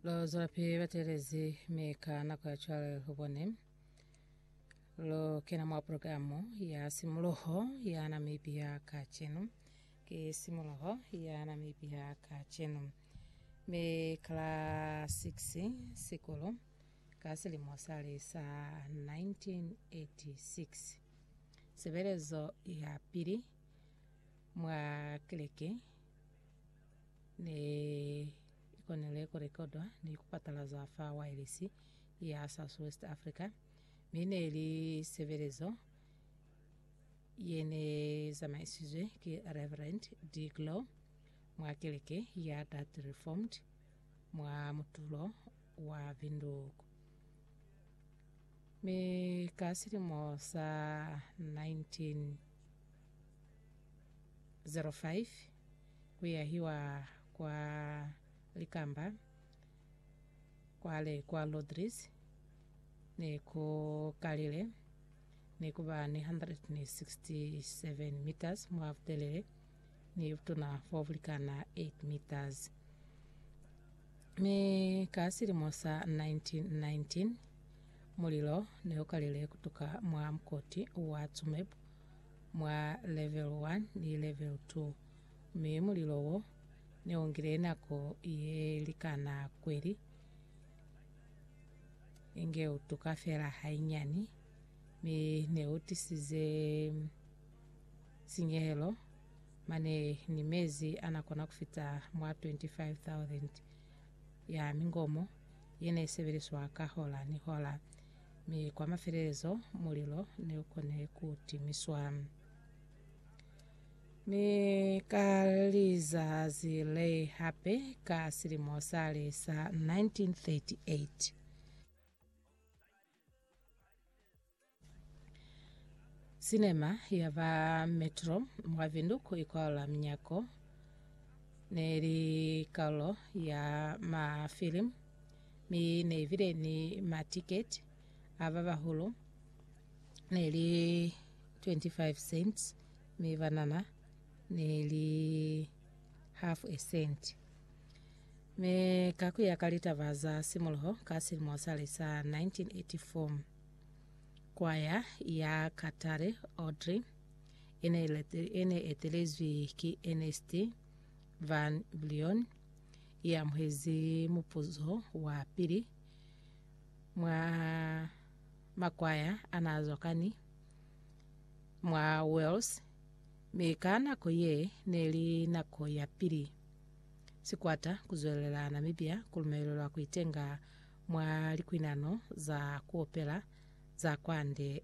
Lo zwela pili ba telezi mi ka nako ya cwale lu bone lu kena mwa programu ya simuloho ya Namibia kacenu. Ki simuloho ya Namibia kacenu. Mi kala 6 sikulu ka silimo sali sa 1986. Sebelezo ya pili Mwa keleke ne i konile ku rekodwa ni ku patalazwa fa waelesi ya South West Africa, mi ne li sebelezo ye ne zamaisizwe ki Reverend De Glou mwa keleke ya Dutch Reformed mwa mutulo wa Windhoek. Mi ka silimo sa 19. 05 ku yahiwa kwa likamba kwale kwa Rodrigues ne ku kalile ne ku ba ni 167 meters mwa butelele. ne i butuna fa ku likana 8 meters. Mi ka silimo sa 1919, mulilo ne u kalile ku tuka mwa mukoti wa Tsumeb mwa Level 1 ni Level 2, mi mulilo wo ne u ngile nako ye likana kweli, inge u tuka fela hainyani, mi ne u tisize sinyehelo mane ni mezi anakona kufita mwa 25,000 ya mingomo yene isebeliswa ka hola ni hola, mi kwa mafelelezo mulilo neukone kutimiswa. Mi ka lizazi le hape ka silimo sale sa 1938, Sinema ya ba Metro mwa Windhoek ikwala minyako ne li karolo ya mafilimu mi ne ibile ni matiketi a ba bahulu ne li 25 cents mi banana ne li half a cent. Mi ka ku ya ka litaba za simuluho ka silimo sale sa 1984, kwaya ya Katare Audrey e ne ilete- e ne etelezwi ki Ernest Van Vlion i amuhezi mupuzo wa pili mwa makwaya a n'a zwakani mwa Wales, mi ka nako ye ne li nako ya pili Sikwata kuzwelelela Namibia kulumelelwa kuitenga mwa likwinano za kuopela za kwande.